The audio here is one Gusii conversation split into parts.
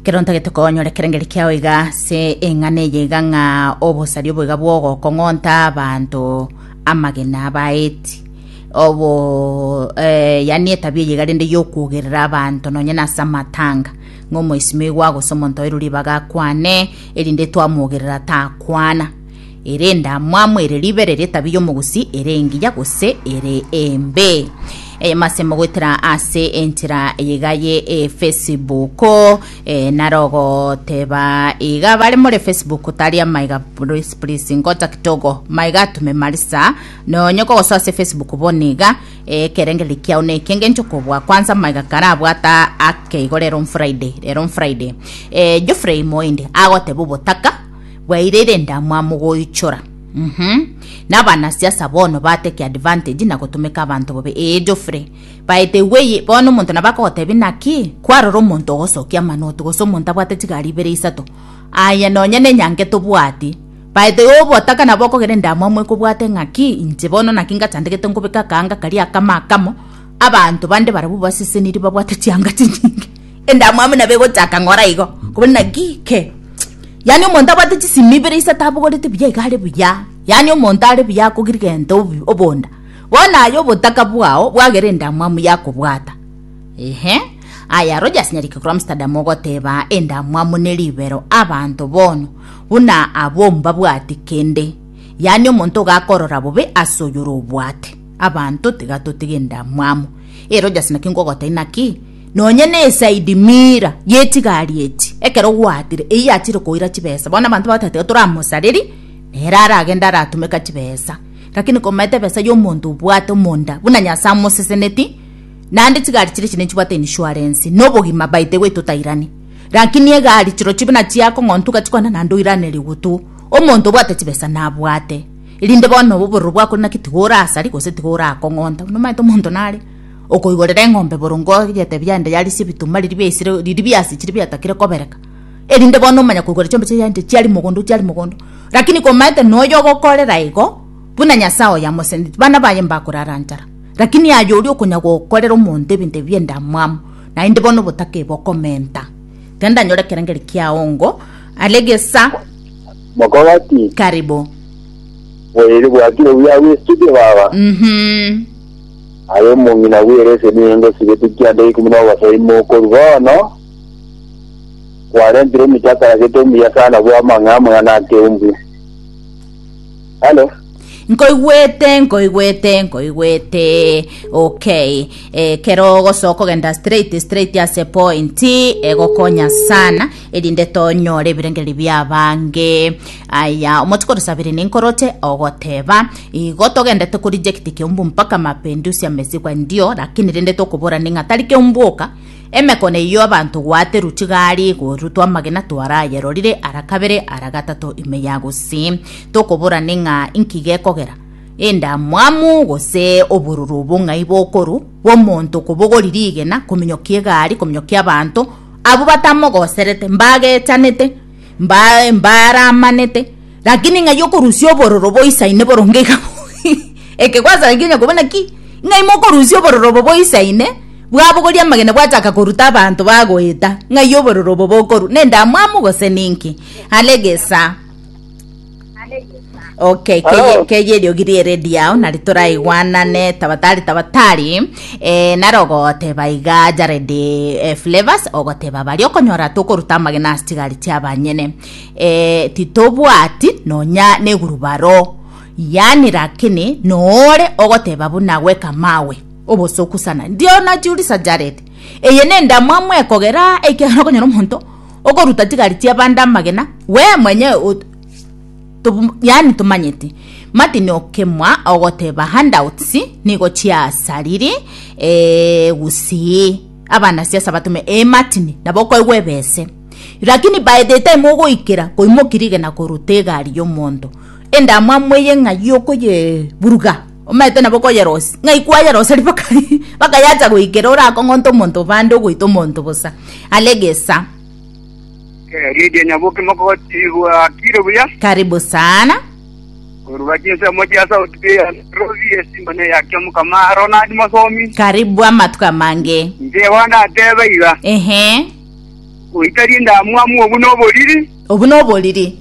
Kero ntagete konyora ekerengeri kiao iga ase eng'ana eye iga ng'a obosari oboiga bwogokong'onta abanto amagena abaeti obo eh, yani etabia eye iga rende yokwogerera abanto nonye na ase amatanga ng'a omoisimio igwa gose omonto oirwe ribaga akwane erinde twamwogerera takwana ere endamwamu, ere ribe, ere ritabi ri'omogusi, ere engiya, gose ere embe. Eye mase mogoetera ase enchera eyega ye eh, Facebook eh, naro goteba iga bare more Facebook tari amaiga please please ngocha kitogo maiga atume marisa nonye kogosoa ase Facebook bone iga eh, ekerengereri kiao neki engencho kobua kwanza maiga karabwata akeigo rero on Friday rero on Friday eh, Geoffrey Moindi agoteba obotaka Bwaire renda mwamo goichora. Uhmm. Nabana siasa bono ba take advantage na gotomeka abanto bobe ee Geoffrey. By the way bono omonto nabo akogotebia naki? Kwarora omonto ogosokia amanoti gose omonto abwate chigari ibere isato. Aye nonya nenyange tobwati. By the way obotaka nabo okogera endamwamu ekobwate ngaki inche bono naki ngachandegete nkobeka akaanga karia akamo akamo. Abanto bande barabwo baseseniri babwate chianga chinyinge. Endamwamu nabo egochaka ng'ora igo, kobuna naki ke? Yaani omonto abwate chisimi ibere ise tabogorete buya iga are buya, yaani omonto are buya akogirigenta obonda, bono aye obotaka bwao bwagere endamwamu yakobwata. Ehe, aya Rogers Nyariki korwa Amsterdam ogoteba endamwamu ne ribero abanto bono buna abwo mbabwati kende, yaani omonto iga akorora bobe ase oyore obwate. Abanto tiga totige endamwamu. Ee Rogers naki ngogotebi naki? Nonye na esaidi mira y'echigari echi, ekero gwaatire, eyio achire koira chibesa. Bono abanto bagotaete iga toramosarerie, nere aragende aratumeka chibesa. Lakini komaete ebesa y'omonto obwate omonda, buna Nyasae amoseseneti, naende chigari chiria chine nchibwate insurance, na obogima by the way totairani. Lakini egari chirochio buna chiakong'ontwa igachikona naende oiranerigwe tu. Omonto obwate chibesa nabwate, erinde bono obororo bwakore naki tiga orasaria gose tiga orakong'onta. Buna omanyete omonto nare. okoigorera eng'ombe boronge ogete biande yaria ase ebituma riria biaisire riria biasire chiria biatakire kobereka, erinde bono omanye koigorera chiombe chiria chiainte chiaria mogondo chiaria mogondo. Rakini komaete noyo ogokorera igo, buna Nyasae oye amoseseneti, bana baye mbakorara nchara. Rakini aye oria okonya gokorera omonto ebinto ebi bi'endamwamu, naende bono obotake bokomenta. Genda nyore ekerengeri kiao ngo are gesa. Mokogati. Karibu. Bwaire bwakire buya bw'estudio baba. Uhum. Aye omong'ina bw'ereseni eye ngosigetie kianda ikomi na obosa ime okorwa bono, kwarentire omochie akaragete omuya sana bwa amang'e amang'ana akeumbu. Halo. Nkoigwete, nkoigwete, nkoigwete. Okay. Eh, kero ogosoka ogenda straight, straight ase point, egokonya sana, erinde tonyore ebirengererio biabange. Aya, omotuko orosabire ninkoroche, ogoteba, Igo togendete korijecti keumbu mpaka mapindusi amesigwa ndio, lakini rende tokobora ning'a tari keumbu oka, emekone eyio abanto gwaterwa chigari igoro twamagena twarayerorire ara kabere ara gatato ime ya gose tokobora ning'a inki gekogera endamwamu gose obororo obong'ai bokoru bw'omonto kobogori rigena kominyokia egari kominyokia abanto abwo batamogoserete mbagechanete mba- mbaramanete, lakini ng'a yokorusia obororo boisaine boronge iga ekegwasa nakio onye koba naki ng'a ime okorusia obororo obo boisaine bwabogoria amagena bwachaka koruta abanto bagoeta ng'ai obororo obo bokorwa nendamwamu gose ninki are gesaa Okay, Hello. keye eriogi riere diao nari toraigwanane tabatari tabatari eh, nare ogoteba iga Jared eh, Flavors ogoteba bari okonyora tokoruta amagena ase chigari chiabanyene eh, titobwati nonya negurubaro yani lakini noore ogoteba buna gweka mawe obosoku sana ndio najiurisa Jared eye nendamwamu ekogera ekiagera okonyora omonto Okoruta chigari chi'abande amagena, wee mwenyewe o tobu yaani tomanyeti. Martin okemwa ogoteba handouts nigo chiasariri ee gusii abana siasa batume ee Martin nabo okoigwa ebese lakini by the time ogoikera koimoki rigena koruta egari y'omonto endamwamu eye ng'ai okoyeburuga Omanyete nabo koyerosia, ng'ai kwayeroseria mpaka mpaka yacha goikera ore akong'onta omonto bande ogoita omonto bosa are gesa. Eh, Lydia Nyabuki mokotigwa akire buya. Karibu sana. Koruga chinse mochia South Bay ya Nairobi esimba ne ya kia mukama Ronald Mosomi. Karibu amatuko amange. Nche bono natebe iga. Ehe. Goita rinde amwamu obu noboriri. Obu noboriri.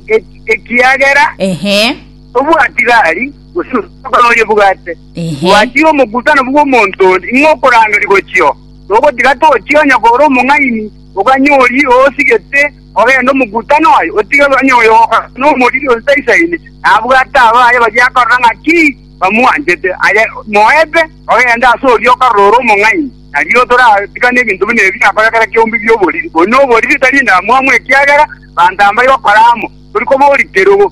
Ekiagera. Ehe. Obwati gari. gose omogondo oria obwate. Ehe. Bwatia omogutano bw'omonto onde, ing'o okorangeria gochia oo? Togotiga tochia onye kore omong'aini, oganye oria osigete, ogende omogutano aye, otige onye oyo ogokwana nomoriri osaisaine, nabwate abaye baria akarora ng'aki bamwanchete. Aye moebe, ogende ase oria okarora ore omong'aini. Nario toratigane ebinto buna ebi biakorire kera kiombe bi'oboriri. Oyo noboriri tari endamwamu ekiagera banto aba mbaigo kora amo, tori koba ori kerogo.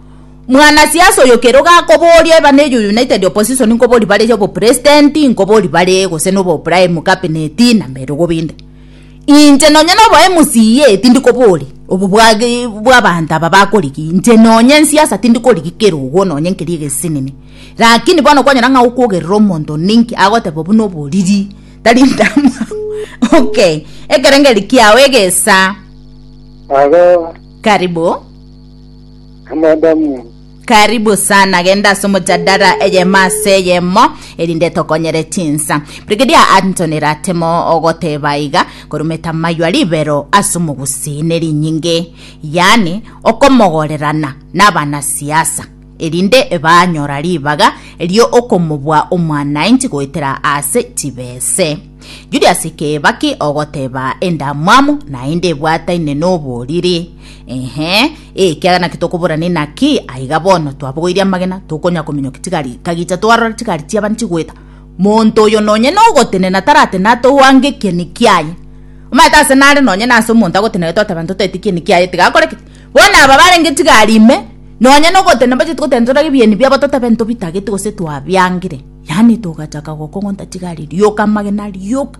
mwanasiasa oyo kero gakoboria eba ne united opposition nkobori bare obo president nkobori bare gose nobo prime cabinet na merogo binde inche nonye nobo mca tindi kobori obo bwage bwabanto aba bakorigi inche nonye nsiasa tindi korigi kerogo nonye nkeria egesinini lakini bono kwanyora ng'a okogerera omonto onde inki agoteba buna oboriri tari ndamwabo okay ekerengeri kiao egesa Halo. Karibu. Amadamu. Karibu sana genda ase omojadara eyemo ase eyemo erinde tokonyere chinsa Brigadier Anthony Ratemo ogoteba iga korumeta Maywa ribero ase omogusi nerinyinge yaani okomogorerana nabana siasa erinde banyora ribaga rio okomobua omwanainchi goetera ase chibese Julius Kibaki ogoteba endamwamu naende ebwataine noboriri Inhe, ekiagera naki tokoborana inaki? Aiga bono twabogoirie amagena, tokonya kominyokia chigari ika gicha twarora chigari chi'abana chigoeta. Monto oyo nonye nogotenena taratene atouange ekieni kiaye. Omanyete ase nare nonye nase omonto agotenena twateba ntotaete ekieni kiaye tiga akore ki? Bono aba barenge chigari ime, nonye nogotenena mbacheti gotenena torore ebieni biabo totebe ntobitageti gose twabiangire. Yaani togachaka gokong'onta chigari, rioka amagena, rioka.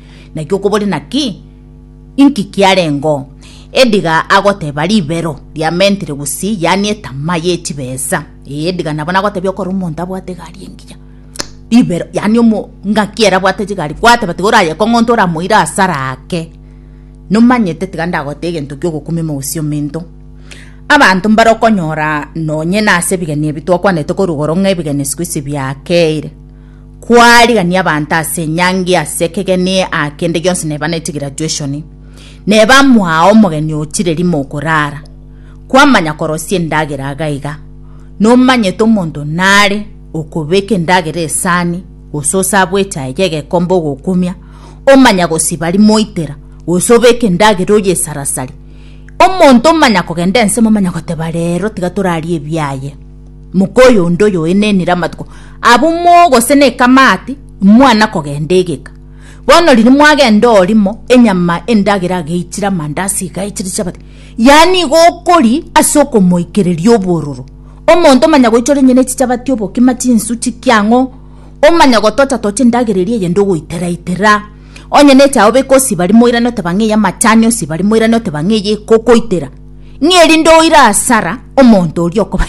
Naki okobori naki? Inki kiarengeo? Ediga agoteba ribero ria mentire gusii, yaani etama ye chibesa. Ee, ediga nabo nagotebia okore omonto abwate egari engiya. Ribero, yaani omo ng'aki ere abwate chigari, gwateba tiga oraye kong'onto oramoire asara ake. Nomanyete tiga ndagotee egento kiogokumia omogusii omento. Abanto mbare okonyora nonye nase ebigeni ebi twakwanete korwa igoro ng'a ebigeni siku isi biakeire. kwarigania abanto ase enyangi ase ekegeni aa kende gionsi neba neti graduation neba mwao omogeni ochire rimo okorara kwamanya korosia endagera iga iga nomanyete omonto nare okobeka endagera esani gose osabwe echaye gegekombe ogokumia omanya gosiba rimo oitera gose obeke endagera oyesarasari omonto omanya kogenda ense momanya goteba rero tiga torarie ebiaye Moka oyo onde oyoenenire amatuko abo moo gose nekamati imwana kogenda egeka. Bono riria mwagenda orimo enyama endagera ageichire amandasi iga aichire chabati yaani igo okori ase okomoikereria obororo. Omonto omanya goichora onye nechichabati obokima chinsu chikia ang'o omanya gotocha tocha endagera eria eyende ogoitera itera onye nechae obeke osiba rimo oirane oteba ng'ai amachani osiba rimo oirane oteba ng'ai ekokoitera. ng'a erinde oire asara omonto oria okoba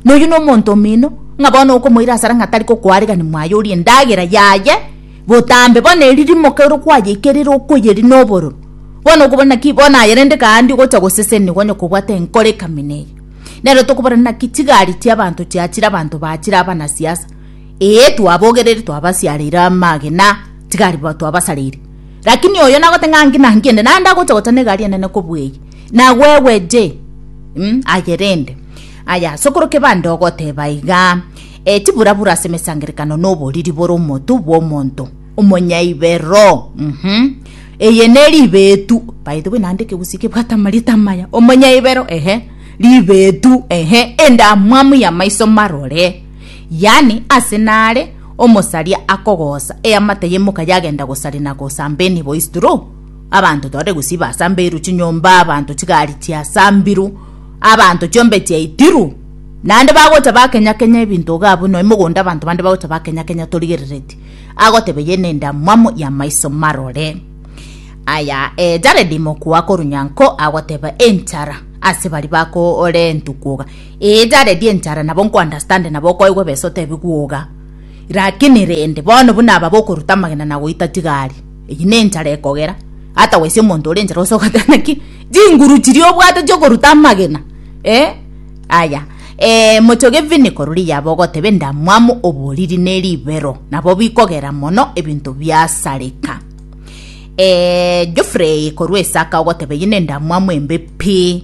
noyio nomonto omino ng'a bono okomoira asara ng'a tari kokoaregani mwaye orie endagera yaye botambe bono eri rimoke ero kwayeika erere okoyeri nobororo bono okobona ki bono aye rende kande ogocha goseseni onye kobwate enkoro ekamina eye nero tokoborana ng'a ki chigari chiabanto chiachire abanto bachire abanasiasa ee twabogereri twabasiareire amagena chigari twabasareire. Lakini oyo nagote ng'a nki na nki ende naende agocha gochana egari enene kobua eye, nagwegwe je, mm, aye rende. Aya, sokoro kebande ogoteba iga, e, chiburabura ase emesangerekano na oboriri bore omotu bw'omonto omonyaibero, mhm, eye ne ribetu, by the way naende ekegusii kebwate amarieta amaya, omonyaibero, ehe, ribetu, ehe, endamwamu y'amaiso marore. yaani ase naare omosaria akogoosa eamate y'emoka yagenda gosari na gosamba enibo isdro abanto tore gusii basambeiru chinyomba abanto chigari chiasambiru abanto chiombe chiaitiru naende bagocha bakenya kenya ebinto igaa buna emogonda abanto bande bagocha bakenya kenya torigerereti agoteba eye nendamwamu y'amaiso marore aya e jaredi mokuwa korunyanko agoteba enchara ase bari bakoore entukuga Ee taredi enchara nabo nkounderstande nabo okoigwa besa otebigwe oga. Rakini rende bono buna aba bokoruta amagena na goita chigari, eyio nenchara ekogera. Otherwise omonto ore enchara ase ogoteba naki chinguru chiria obwate chiokoruta amagena eh aya eh mochoge vini korwa iyaba ogoteba endamwamu oboriri ne ribero nabo bikogera mono ebinto biasareka. Eh Geoffrey korwa Isaka ogoteba eyio nendamwamu embe pi.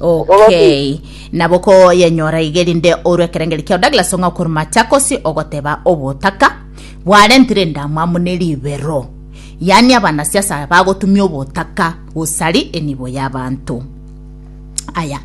okay nabo koyenyora iga erinde orwe ekerengeri kiao douglas ong'a okoru machakosi ogoteba obotaka bwarentire endamwamu ne ribero yaani abanasiasa bagotumia obotaka gosari enibo y'abanto aya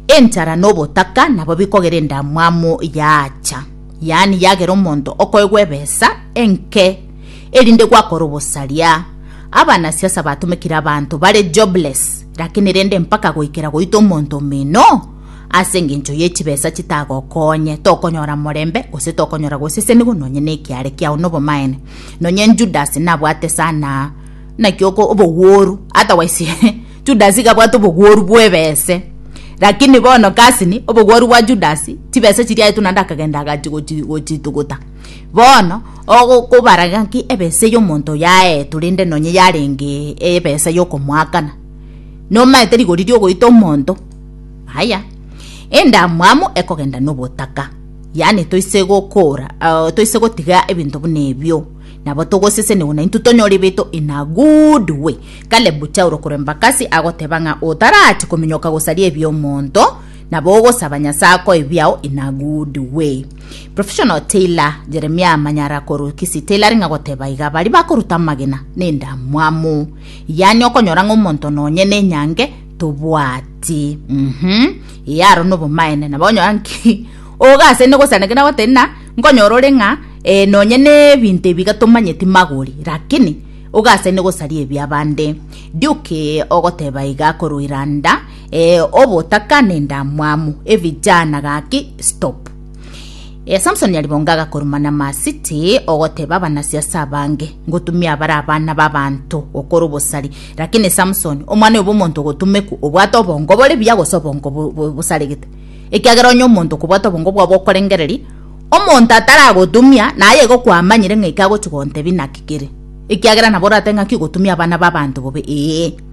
enchara na obotaka nabo bikogera endamwamu yaacha yaani yagera omonto okoegwa ebesa enke erinde gwakora obosaria. Abanasiasa batomekire abanto bare jobless, lakini rende mpaka goikera goita omonto omino? Ase engencho ye chibesa chitagokonye, tokonyora morembe gose tokonyora gosesenigwa nonye nekiare kiao nobomaene. Nonye Judas nabwate sana naki oko obogworu, otherwise Judas iga abwate obogworu bwebese. Lakini bono kasini obogworu bwa Judas, chibesa chiriaetwe naende akagenda agachi gochi gochituguta. Bono, ogokobara ng'aki ebesa y'omonto oyo aetwe rende nonye yarenge ebesa y'okomoakana, nomaete rigori ri'ogoita omonto? Aya. Endamwamu ekogenda nobotaka, yaani toise gokora, uh, toise gotiga ebinto buna ebio nabo togoseseniwa na intwe tonyore ebiaito in a good way. Kale buchia orokoremba kasi agoteba ng'a otarachi kominyoka gosaria ebi'omonto, Nabo ogosaba Nyasae akoe biao in a good way. Professional tailor Jeremiah Manyara korwa Kisii Tailoring agoteba iga baria bakoruta amagena na endamwamu. Yaani okonyora ng'a omonto nonye na enyange tobwati. Mhm. Ee aro nobomaene nabo onyora nki oga ase inde gosaneke na goteba na nkonyora ore ng'a eh, nonye na ebinto ebiga tomanyeti magori lakini oga ase inde gosaria ebiabande. Duke ogoteba iga korwa Iranda Ee obotaka nendamwamu ebijana gaki stop. Ee Samson yaribonga agakoruma na masiti ogoteba abanasi ase abange ngotumia abare abana babanto gokora obosari lakini Samson omwana oyo bomonto ogotumeku obwate obongo bore buya gose obongo bosaregete ekiagera onye omonto okobwata obongo bwabo okorengereria omonto ataragotumia naye igo kwamanyire ng'a eki agochi gontebi naki kere ekiagera nabo orate ng'aki ogotumia abana babanto bobe ee.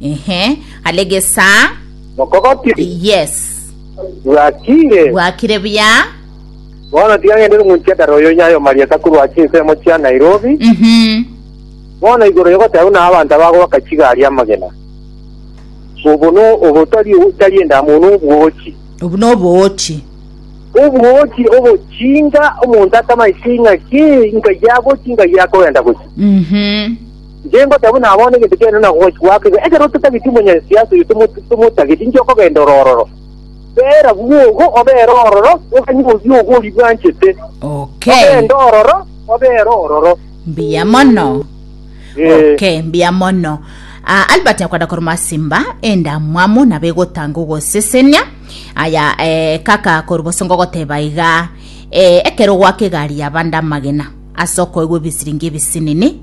ehe hale gesaa Mokogotiri. yes Bwakire. bwakire buya Bono tiga ngende rung'unchie ekero oyo nyayo marieta korwa ase ensemo chia Nairobi. Mhm. Bono igoro yogoteba buna abanto abagoaka chigari amagena. Obo no obo tari tari endamo no obwochi. obu noboochi Obwochi obochinga omonto atamaeti ng'aki nkai agochi nkai akogenda gochi. Mhm. Inche ngoteba buna abana egento kiane na gochi gwake iga, ekero ototageti omonyasiasa oyo tomotageti, inche okogenda ore ororo. Bera bwogo obere ororo, oganye obwogo oria bwanchete, Okay. ogende ororo obere ororo. mbuya mono Eh. okay mbuya mono Ah, albert nyakwenda koroma simba endamwamu nabo egotanga ogosesenia aya eh, kaka koriboso ngogoteba iga eh, ekero gwaka egari yabande amagena ase okoigwa ebisiringi ebisinini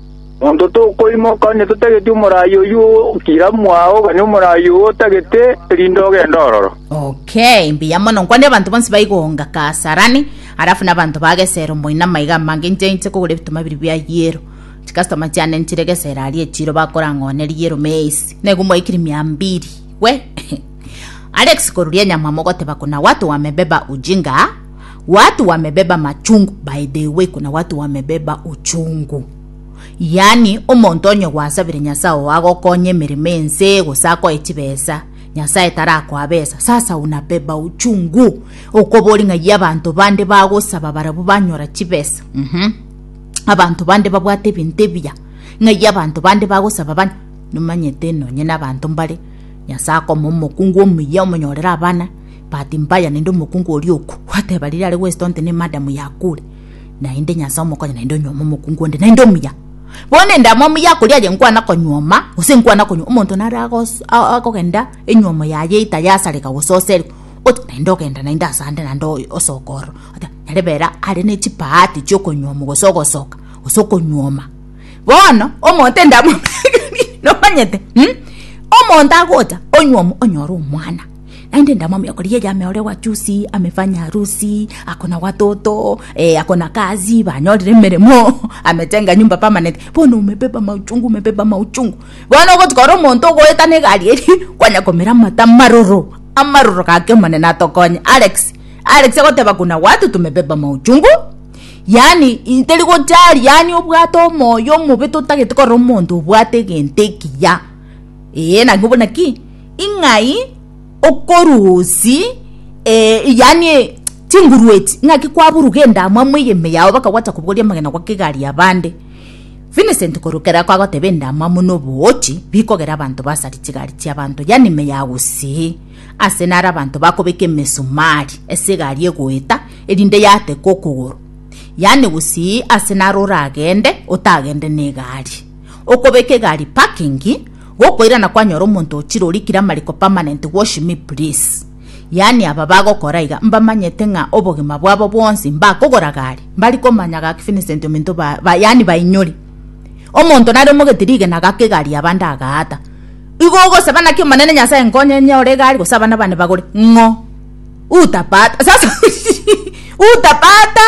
Monto tokoimoka onye totageti omoraai oyio, kira mwao oganie omoraai oo otagete, erinde ogende ororo. Okay, mbuya mono. Nkwane abanto bonsi baigonga Kasarani, alafu na abanto ba Gesero moina amaiga amange inche inche kogora ebituma biri bia yero. Chikastoma chiane nchire Gesero aria echiro bakorang'oone riyero meisi. Naigu mwaikiri mia mbiri. We. Alex koruria nyamwa mogoteba kuna watu wamebeba ujinga. watu wamebeba machungu by the way kuna watu wamebeba uchungu yani omonto onye gwasabire nyasaye oo agokonye emeremo ense gose akoe chibesa nyasaye tarakoa besa sasa unabeba uchungu okobori ng'ai abanto bande bagosaba barabwo banyora chibesa mm -hmm. abanto bande babwate ebinto ebiya ng'ai abanto bande bagosaba bane nomanyete nonye na abanto mbare nyasaye akoma omokungu omuya omonyorera abana Bahati mbaya naende omokungu oria oku gwateba riria are gwesita onte ne madam yakure. Naende Nyasae omokonye naende onyuome omokungu onde naende omuya. Bono ende amo omuya akoria aye nkwana konyuoma gose nkwana konyuoma omonto nare agos- a- akogenda enyuomo yaye itayasareka gose oserwe ote naende ogenda naende asande naende oy- osoka ororo ote nyare bera are ne chibahati chia okonyuomu gose ogosoka gose okonyuoma. Bono omonto ende amo nomanyete mh omonto agocha onyuomu onyore omwana. Naende ndamomia okori yeye ame ore wachusi, amefanya harusi, ako na watoto, eh, ako na kazi, banyorire emeremo, ametenga nyumba permanent. Bono umebeba mauchungu, umebeba mauchungu. Bono ogotuka ore omonto ogoetana egari eria, kwanya komira amate amaroro, amaroro gaki Omonene atokonye. Alex, Alex agoteba kuna watu tumebeba mauchungu, yaani i- teri gojari, yaani obwate omoyo omobe totagete korora omonto obwate egento ekiya. Eeh, naki buna ki? ing'ai okorusi eh, yani chingurueti ing'aki kwaburuga endamo amo eyeme yao bakagwata kobogoria amagena gwa kegari ya bande Vincent korokera kwagoteba endamo amo nobogochi bikogera abanto basari chigari chia banto yani ime ya gusii ase nare abanto bakobeka emesumari ase egari egoeta erinde yateka okogoro yani gusii ase nare oragende otagende na egari okobeka egari parking Gokoirana kwanyora omonto o chirori kira amariko permanent wash me please yaani aba bagokora iga mbamanyete ng'a obogima bwabo bwonsi mbakogora gari mbari komanya gaki Vincent ominto ba, ba yaani bainyore omonto nare omogeti rigena gaka egari yaba ndagaata igo ogosaba naki omonene nyasaye nkonye nyore egari gose abana bane bagore ng'o utapata sasa utapata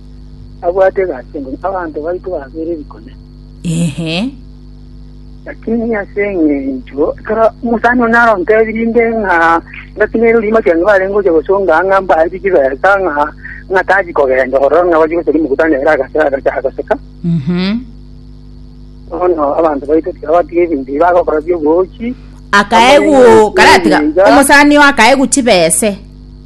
abwate egati engume, abanto baito babere ebikone. Ehe. Lakini ase eng'encho ekero omosani one arontebirie inde ng'a ndatinere orimo ekiagera barenge gocha gosonga ang'e ng'a mbae chibesa ng'a ng'a tachi kogenda ororo ng'a bache gocha rimokutano ere agase agacha agoseka Mhm. bono abanto baito tikabatiga ebinto ebi bagokora biobochi akaegu karatiga omosani oo akaegu chibese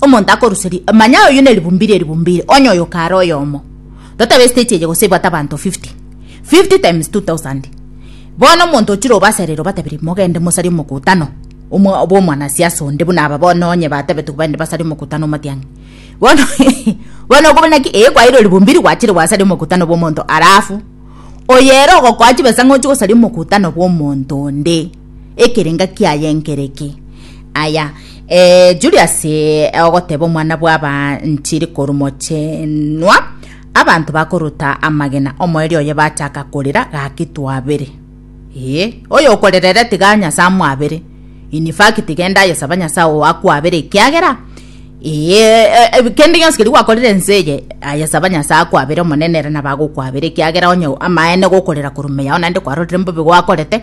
Omonto akorusia ri, manya oyio ne ribumbi rie ribumbi ire, onye oyo kare oyomo. Totabe estage eye gose ebwate abanto 50. 50 times 2000. Bono omonto ochire obasarere obatabire, mogende mosarie omokutano omwa obo omwanasiasa onde buna aba bono onye batebetwe baende basarie omokutano omatiang'i. Bono bono okoba naki ee kwairwe ribumbi ri gwachire gwasaria omokutano bwa omonto alafu oyo ere ogokoa chibesa ng'a ochie gosaria omokutano bwa omonto onde. ekerenga kiaye nkereki. Aya, eh, Julius eh, ogoteba omwana bw'abanchiri korumochenwa, abanto bakoruta amagena omoerio oye bachaka korera gaki twabere. Eh, oyo okorerere tiga Nyasa amwabere. In fact, genda ayesaba Nyasa oo akwabere ekiagera eh, kende gionsi keri gwakorire ense eye ayesaba Nyasa akwabere omonene ere nabagokwabere ekiagera onye amaene gokorera korumeya onande kwarorire mbobe gwakorete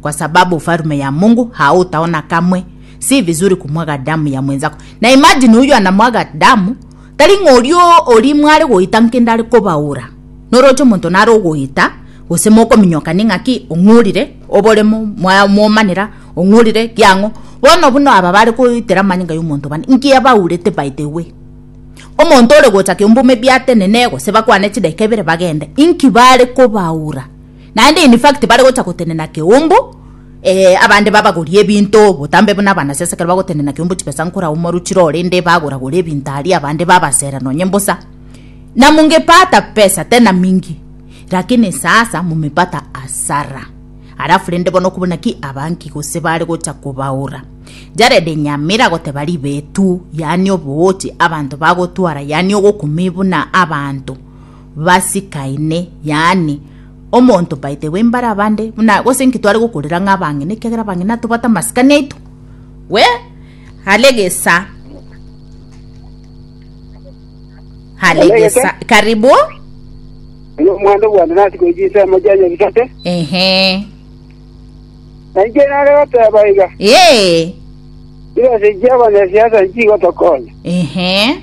kwa sababu ufarume ya mungu hautaona kamwe si vizuri kumwaga damu ya mwenzako na imagine uyu anamwaga damu tari ng'orio ori mware goita nkende ari kobaura noroche omonto nare ogoita gose mokominyoka ning'aki ong'urire oboremo mwomanera ong'urire kiang'o bono buna aba bare koitera amanyinga y'omonto bane nkia baurete by the way omonto ore gocha kiombume biatenene gose bakwane chidakika ibere bagende inki bare kobaura Naende in fact bare gocha gotenena keumbu eh, abande babagorie ebinto botambe buna abanasiasa ekero bagotenena keumbu chibesa nkora omoru chirore inde bagora gora ebinto aria abande babasera nonye mbosa na mungepata pesa tena mingi lakini sasa mumepata asara alafu rende bono kubuna ki abanki gose bare gocha kobaura jarede nyamira goteba ribetu yani obogochi abanto bagotwara yani ogokumi buna abanto basikaine, yaani, omonto baite bw'imbare abande, buna gose inki tware gokorera ng'a abang'ina, ekiagera abang'ina tobwate amasikani aito. We hare gesa. Hare Hare gesa. gesa. Karibu. Oyo omwana bwanda nasi goichi ensemo chia nyabisate. Ehe. Nainche nare goteba iga. Ee. Chibesa chia abanyasiasa nchigotokonya. Ehe.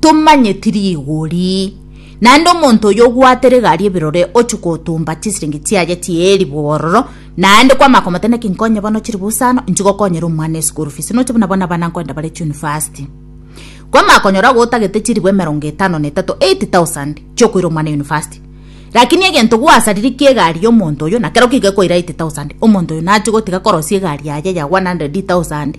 Tomanyeti rigori. Naende omonto oyio obwate rigari ebirore ochia gotumba chisiringi chiaye chi'eribu ororo, naende kwamanya komotebia naki nkonye bono chiribusa ano, inche gokonyera omwana eschool fees, noche buna bono abana nkoenda bare chunifasti. Kwamanya konyora agwo otagete chiribu emerongo etano na etato, eight thousand, chiokoira omwana unifasti. Rakini egento gwasariri kia egari y'omonto oyio, nakero kigekoira eight thousand, omonto oyio nachia gotiga korosia egari yaye ya one hundred thousand.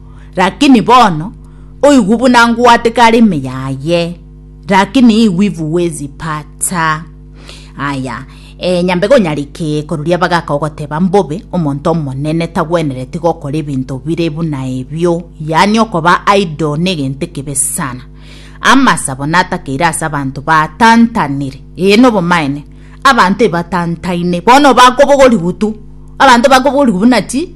Lakini bono oigwe buna ngwate karimi yaye, lakini igwi bwezi pata. Aya, ee, nyambe gonyariki koruria bagaka ogoteba mbobe omonto omonene tagwenereti gokora ebinto bire buna ebio, yaani okoba idle negento ekebe sana. Amasa bono atakeire ase abanto batantanire, ee nobomaene, abanto ebatantaine bono bakobogorigu tu, abanto bakobogorigu buna chi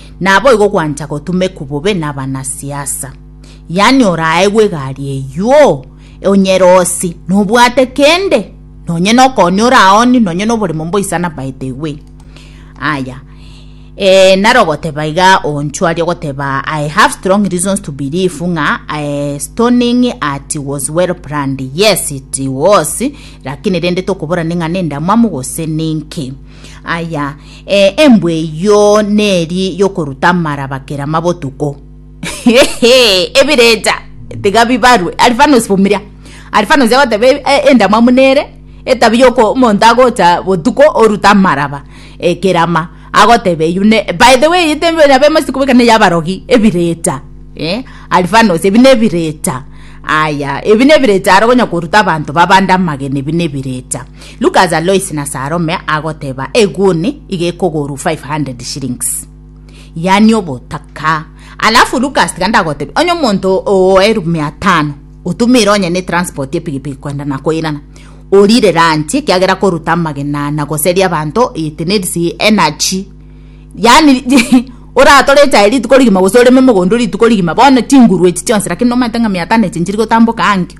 Naboigo gwancha gotumekwa bobe nabanasiasa. Yaani oraegwe egari eyio onyerosi nobwate kende nonye nokooni oraoni nonye noboremo mboisana by the way. Aya eh, naro goteba iga onchwaria goteba I have strong reasons to believe ng'a eh, stoning at was well planned. Yes it was lakini rende tokoborani ng'a nendamwamu gose ninki. Aya, eh, embwa eyio neri yokoruta amaraba kera mabotuko. Ebirecha tiga bibarwe. Alfanus Vumilia. Alfanus agoteba e- e- endamwamu nere etabi yoko omonto agocha botuko orute amaraba eh, kerama agoteba eyio ne by the way ete nabo emosiko bweka neya abarogi ebirecha eh, Alfanus ebi nebirecha aya ebi nebirecha aro okonya koruta abanto babande amagena ebi nebirecha Lucas Alois na Salome agoteba eguni iga ekogorwa 500 shillings. Yani obotaka. Alafu Lucas tiga ndagotebi onye omonto oo elfu mia tano otumire onye ne transport epigipigi kwenda na koirana. Orire lunch ekiagera koruta amagena na goseria abanto it needs energy. Yani oratore echae rituko rigima gose oreme mogondo rituko rigima bono chinguru echi chionsi lakini nomaete ng'a mia tano echi nchiri gotamboka ankio.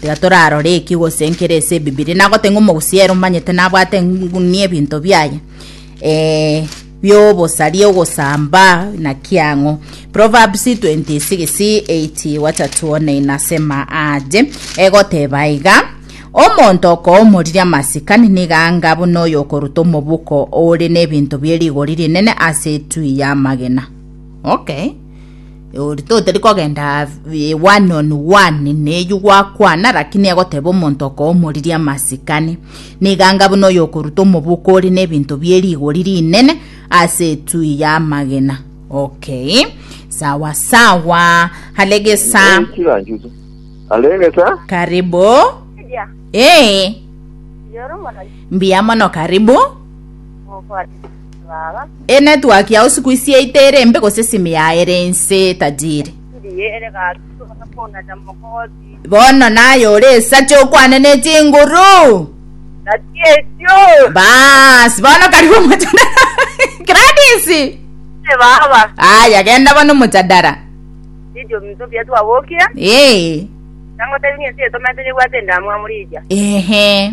Tiga torarore eki gose nkere ase ebibiria nagote ng'a omogusi ere omanyete nabwate ng'unia ebinto biaye eh, biobosaria ogosamba naki ang'o proverbs 26 8 wacha tuone inasema aje egoteba iga omonto okoomoriria amasikani niga anga buna oyo okoruta omobuko ore n'ebinto bie rigori rinene ase etui y'amagena okay Oritoo tari kogenda eh, one on one neywo gwakwana rakini egoteba omonto okoomoriria amasikani niganga buna oyo okoruta omobuko ore n'ebinto bie rigori rinene ase etui y'amagena okay sawa sawa haregesa chiranchusu arengesa karibu Media, ee yoro mwana mbuya mono karibu mofati. Enetwork yao siku ici yaito ere mbe gose esimi yao ere inse etajiri. Bono naye ore esacha okwane ne chinguru. Baas bono karibu omojadara. Gladys. Aya genda bono omojadara. Ee. Ehe.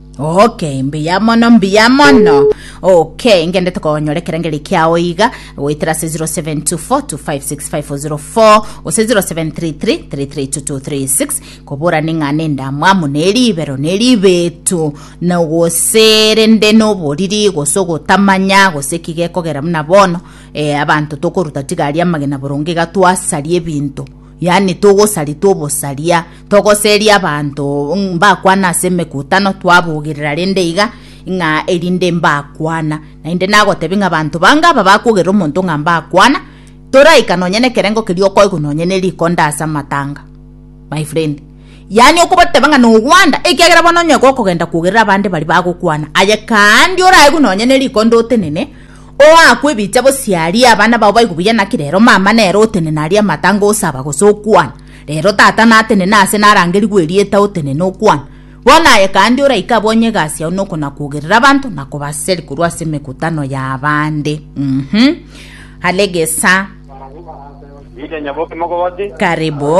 Okay, mbuya mono mbuya mono okay ngendete konyora ekerengeri kiao iga goetera ase 0724256504 gose 0733332236 kobora ning'a nendamwamu neribero neribetu na gose rende noboriri gose ogotamanya gose ki gekogera buna bono eh, abanto tokoruta tiga aria amagena boronge iga twasaria ebinto Yaani togosaria tobosaria, togoseria abanto mbakwana ase emekutano twabogerera rende iga ng'a erinde mbakwana. Naende nagotebia ng'a abanto bange aba bakogerera omonto ng'a mbakwana, toraika nonye nekerengo keria okoigwa nonye ne rikonda ase amatanga. My friend, yaani okobateba ng'a nogwanda ekiagera bono onye gokogenda kogerera abande baria bagokwana, aye kaandi oraigwe nonye ne rikonda otenene, Oakwe ebicha gose aarie abana bao baigwe buya naki rero mama nere otenene arie amatango osaba gose okwana. Rero tata natenene aase narangerigwe erieta otenene okwana. Bono aye kandi oraike abonye egasi yao nokonakogerera abanto na kobaseri korwa ase emekutano y'abande. Mhm. Aregesa. Karibu.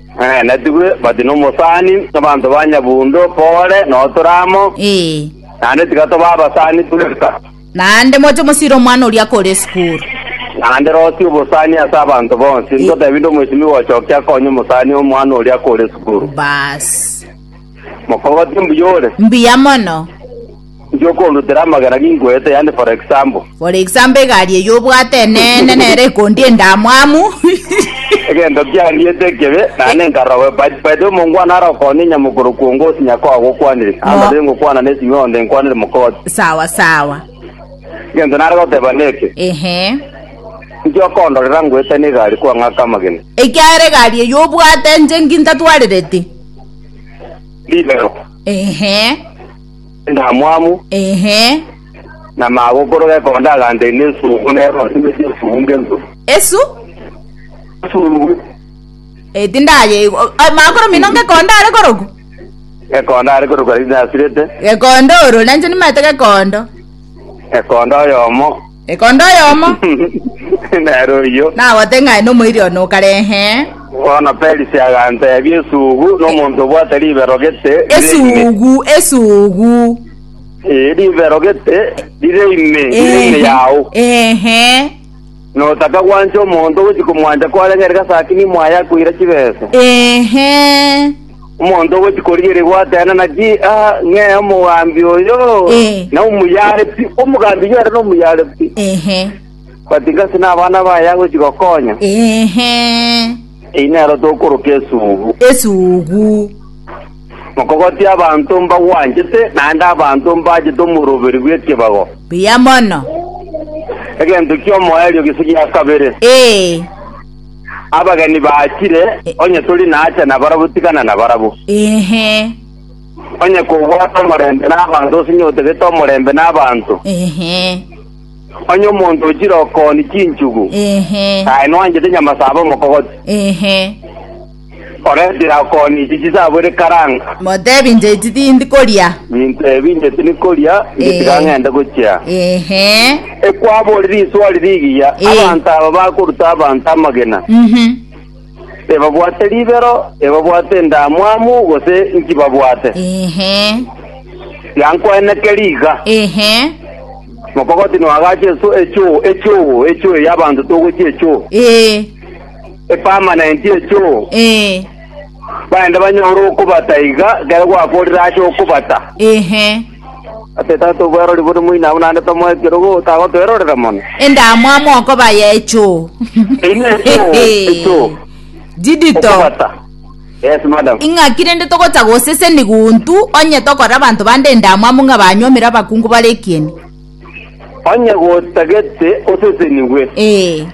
Ee, natigwe bati nomosani nabanto ba nyabundu Kore na Otoramo, Ee. naende tiga toba abasani bweka, Naende moche mosire omwana oria akore esukuru. naende rosie obosani ase abanto bonsi. Ntotebi inde omoisimi gochokia akonye omosani omwana oria akore esukuru. Baasi. Mokogote mbuya ore. Mbuya mono. Inki okorutera amagena ginkwete, yaani for example? For example, egari eye obwate eneene nere ekondie endamwamu. Egento kiandiete ekebe, naende nkarogwe, but by the way omongwana arokoonie nyamokoro kwongo gose nyakao agokwanire, Mo. anga tari ngokwana na esimi onde nkwanire mokooto. Sawa sawa. Egento nare goteba neke, Ehe. inki okondorera ngoetanie egari kwang'aka amagena? Ekiagera egari eye obwate inche inki ntatwarereti. Rimero. Ehe. endamwamu, Ehe. na magokoro gekonda aganteine esugu, nere osimeti esugu ng'ensu. Esu? Esugu Eh, tindaye. Magokoro mino ngekonda are korogu? gekonda are korokwa riri nasirete, Gekonda oro, nanche nimanyete gekondo. gekonda oyomo Ekonda oyomo Nere oyio. nagote ng'a aye nomoiri one o kare, ee. Bono Perisi aganteebia, Esugu, nomonto obwate ribero gete rire ime. Esugu, esugu. Ee, ribero gete rire ime, rire ime Ehe, yao. ehe. Notaka gwancha omonto ogochi komwancha kwareng'ereka asakini mwaye akoira chibesa. Ehe. Omonto ogochi korigeregwa atenena ki aa ng'e omogambi oyo Eh. na omoyare pi, omogambi oyo ere nomoyare pi. Ehe. But ngase nabana baye agochi gokonya, Ehe. eyi nero tokoroka esugu. Esugu. Mokogoti abanto mbagwanchete, naende abanto mbachete omoroberi bw'ekebago. Buya mono. Egento ki'omoerio gise gia kabere. Eh. Abageni baachire, onye tori naacha nabarabwo tigana nabarabwo. Inhe. Onye kobwate omorembe nabaanto gose inye otagete omorembe nabaanto. Inhe. Onye omonto ochire okooni chinchugu. Inhe. Aye noanchete nyama saba omokogoti. Inhe. Ore tirakoni ichi chisabwire karanga. Motebi inche echi tindi koria. Nintebi inche tindi koria, inche tiga Eh. ng'ende gochia. Ehe. Ekwabori riswari rigiya, Eh. abanto aba bakoruta abanto amagena, Mhm. ebabwate ribero, ebabwate endamwamu, gose inki babwate. Ehe. Yankweneke riga, Ehe. mokogoti noagache esu- echuo, echuo, echuo y'abanto togochia echuo. Eh. epermanent echoo, ee baende banyore okobata iga ekero gwakorire ase okobata. ehe Ase tata obwerori bore moino abwo naende tomoa ekerogo otagotoerorera mono. endamwamu okoba yechoo Ine echoo, echoo. didito Okobata. Yes, madam. ing'aki rende togocha goseseni guntu onye tokorera abanto bande endamwamu ng'a banyuomire abakungu bare ekieni Onye gotagete osesenigwe. ee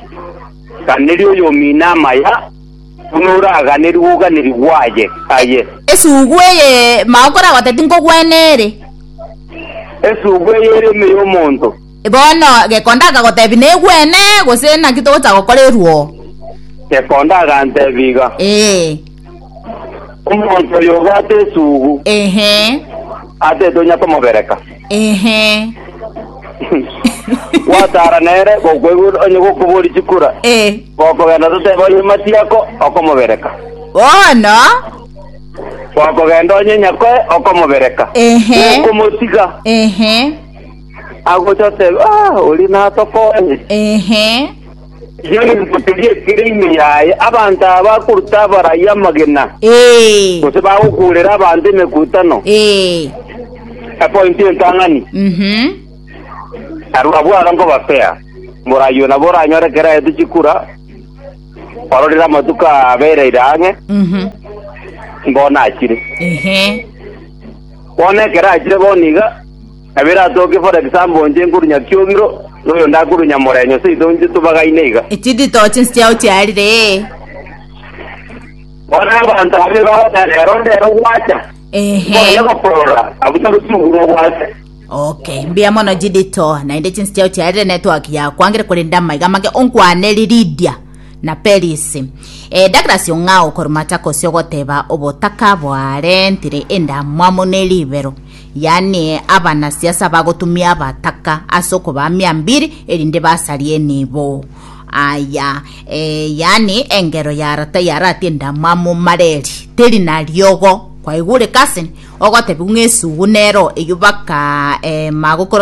Ganeria oyomino amaya, buna oraganerigwe oganerigwe aye, aye. Esugu eye magokora gotya tinkogwena ere. Esugu eye ere ime y'omonto. Bono Gekonda akagotebi negwene, gose naki togocha gokora eruo? Gekonda agantebi iga. Ee. Omonto oyo obwate esugu Ehe. ase tonya komobereka. Ehe. Gwatara nere gokwegura onye gokobori chikura. Eh. Gokogenda toteba onye matiako okomobereka. Bono. Gokogenda onye nyakoe okomobereka. Ehe. Okomotiga Ehe. agocha oteba ah ori natokonye. Ehe. Yori mogotebi ekere ime yaye, abanto aba bakoruta abarai amagena, Ee, gose bagokuurera abanto emekutano, ee, epointi entang'ani. mhm, Aroro abwo aro nkobapea, morai oyio nabo oranyore ekero aete chikura, ororire amatuko abereire ang'e, mhm, mbono achire. ehe. Bono ekero achire bono iga, Kabere atoke for example inche nkorunya kiogiro, na oyo onde akorunya morenyo, seito inche tobagaine iga. Echi nditogo chinse chiao chiarire, ee. Bono abanto abwo bagoteba, Rero ndero gwacha, Ehe. nkonya gokorora, abwo tari chigurwa obwate. Okay, mbuya mono Jidito, naende chinse chiao chiarire network yakwangire korende amaiga amake onkwanere Lydia na Peris. Eh, Douglas Ong'ao korwa Machakos ogoteba obotaka bwarentire endamwamu ne ribero. yaani abanasiasa bagotumia abataka ase okobamia mbiri erinde basarie enibo. Aya, e, yaani engero ya rata yaratie endamwamu mareri, teri nariogo kwaigureka ase ogotebiwa ng'a esugu nero eyubaka e, magokoroge